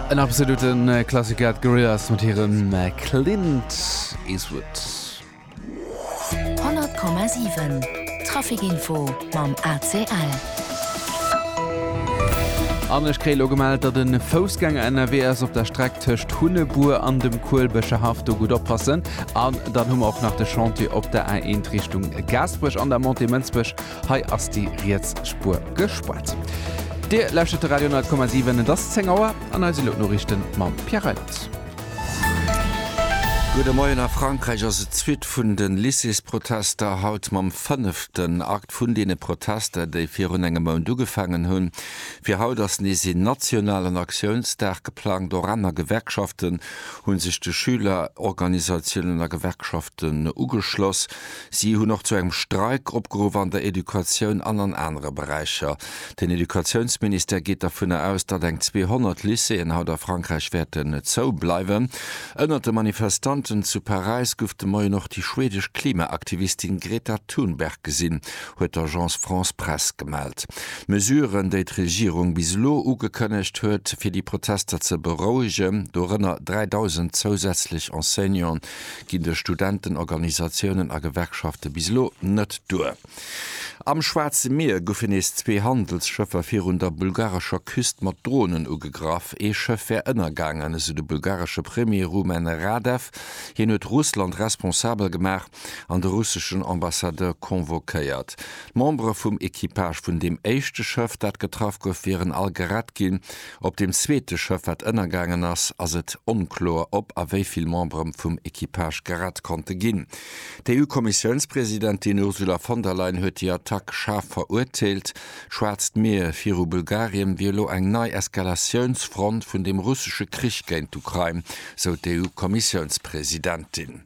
En absolute Klassiker, d'Gorillaz mat hirem Clint Eastwood. 100,7 Traficinfo mam ACL. An ech kréie lo gemellt, datt e Foussgänger ënnerwee ass op der Streck tëscht Hunnebuer an dem Kuelbecher Haff. Do gutt oppassen. An dann hu mer och nach de Chantier op der A1 Richtung Gaasperech an der Montée Mënsbech. Hei ass déi riets Spuer gespuert. Dir lauschert de Radio 10,7. Et ass 10 Auer an eis elo d'Noriichten mam Pierre Reims. Gudde Moien. A Frankräich ass et d'Suite vun de Lycéesprotester. Haut mam fënneften Akt vun deene Protester, déi virun engem Mount ugefaangen hunn. Fir haut ass nees een nationalen Aktiounsdag geplangt. Och aner Gewerkschaften hu sech de Schülerorganisatiounen a Gewerkschaften ugeschloss. Si hunn och zu engem Streik opgeruff an der Educatioun an an anere Beräicher. Den Educatiounsministère geet dervunner aus, datt eng 200 Lycéeën haut a Frankräich wäerten zou bleiwen. Ënnert de Manifestanten zu Paräis gouf de Moien och déi schwedesch Klimaaktivistin Greta Thunberg gesinn, huet d'Agence France Presse gemellt. D'Mesuren, déi d'Regierung bis elo ugekënnegt huet, fir déi Protester ze berouegen, dorënner 3.000 zousätzlech Enseignanten, ginn duerch Studentenorganisatiounen a Gewerkschafte bis elo net duer. Am Schwaarze Mier goufe nees zwee Handelsschëffer virun der bulgarescher Küst mat Dronen ugegraff. Ee Schëff wär ënnergaangen, esou de bulgaresche Premier Rumen Radev. Hien huet Russland responsabel gemaach an de russeschen Ambassadeur convoquéiert. D'Membere vum Equipage vun deem éischte Schëff, dat getraff gouf, wieren all gerett ginn. Op deem zweete Schëff, wat ënnergaangen ass, ass et onkloer, ob a wéi vill Membere vum Equipage gerett konnte ginn. D'EU-Kommissiounspresidentin Ursula von der Leyen huet déi Attack schaarf verurteelt. D'Schwaarzt Mier viru Bulgarien wier elo eng nei Eskalatiounsfront vun dem russesche Krich géint d'Ukrain, sou d'EU-Kommissiounspresidentin.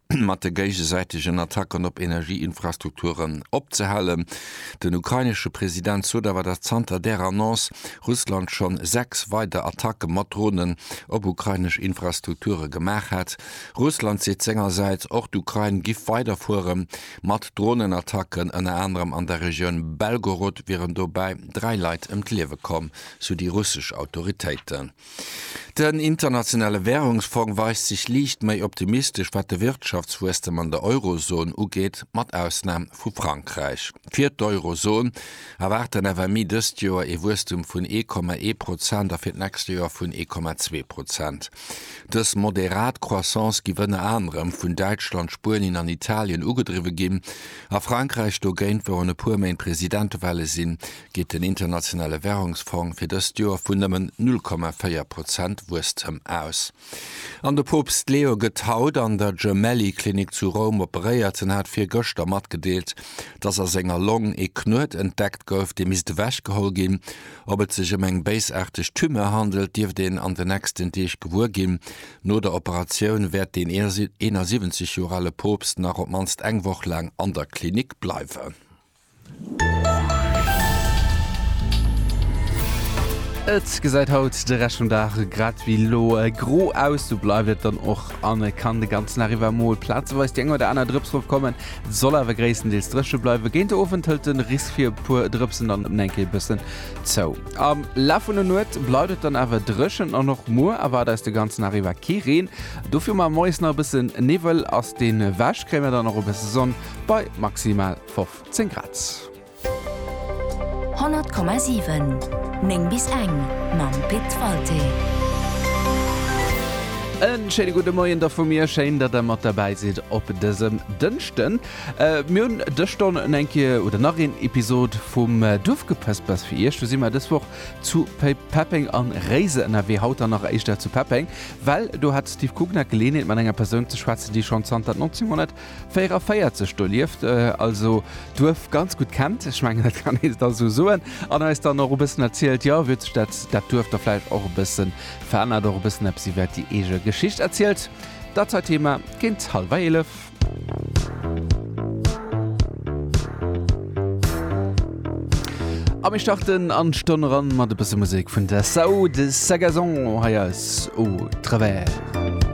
mat de géigesäitegen Attacken op Energieinfrastrukturen opzehalen. Den ukrainesche President sot awer, datt zanter där Annonce Russland schonn sechs weider Attacke mat Dronen op ukrainesch Infrastrukture gemaach hätt. Russland seet sengersäits, och d'Ukrain giff weiderfuere mat Dronenattacken. Ënner anerem an der Regioun Belgorod wieren dobäi dräi Leit ëm d'Liewe komm, sou déi russesch Autoritéiten. Den Internationale Währungsfong weist sech liicht méi optimistesch wat de Wirtschaftswuesstem an der Eurozon ugeet, mat Ausnam vu Frankräich. Fir d'Eurozon erwaart den FMI dëst Joer ee Wuesstem vun ee Komma ee Prozent a fir d'nächst Joer vun ee Komma zwee Prozent. Dës moderat Croissance giff ënner anerem vun Däitschland, Spuenien an Italien ugedriwwe ginn. A Frankräich dogéint, wou an e puer Méint Presidentewale sinn, geet den Internationale Währungsfong fir dëst Joer vun nëmmen 0,4 Prozent Wuesstem aus. An de Poopst Leo gëtt haut an der Gemelli Klinik zu Roum operéiert. En hat virgëschter matgedeelt, dass a senger Long ee Knuet entdeckt gouf, dee misst ewechgeholl ginn. Ob et sech ëm eng béisaarteg Tumeur handelt, dierft een an den nächsten Deeg gewuer ginn. No der Operatioun wäert den 71 Joer ale Poopst nach op d'mannst eng Woch laang an der Klinik bleiwen. Et gesäit haut de Rescht vum Dag grad ewéi elo gro aus, sou bleift et dann och an et kann de ganzen Dag iwwer mol plazeweis déi eng oder aner Drëps erofkommen. Et soll awer gréisstendeels dréche bleiwen, géint de Owend hëlt de Risk fir e puer Drëpsen dann op eng Kéier e bëssen zou. Am Laf vun der Nuet bleift et dann awer dréchen an och muer erwaart eis de ganzen Dag iwwer kee Reen. Dofir mar moies nach e bësse Niwwel, ass deen ewech, kréie mer dann och e bësse Sonn. Bei maximal 15 Grad. 100,7 9 bis eng mam Pit Walté. E schéine gudde Moien da vu mir. Schéin, datt der mat derbäi sidd op dësem Dënschden. Mir hunn dës Stonn un eng Kéier oder nach een Episod vum Duerfgepëspers fir Iech. Do si mer dës Woch zu Peppeng an Réiser ënnerwee. Haut dann nach éischter zu Peppeng, well do hat de Steve Kugner d'Geleeënheet mat enger Persoun ze schwätzen, déi schonn zanter 1900. 44 do lieft, also d'Duerf ganz gutt kennt. Ech mengen dat kann ee da sou soen. An eis dann och e bëssen erzielt, jo, wéi huet sech dat dat Duerf da vläicht och e bësse verännert, och e bëssen eppes iwwert déi eege Geschicht erzielt. Dat hei Thema géint hallwer eelef. A mir starten an d'Stonn eran mat e bësse Musek vun Dessau, de Sagazon hei eis Au travers.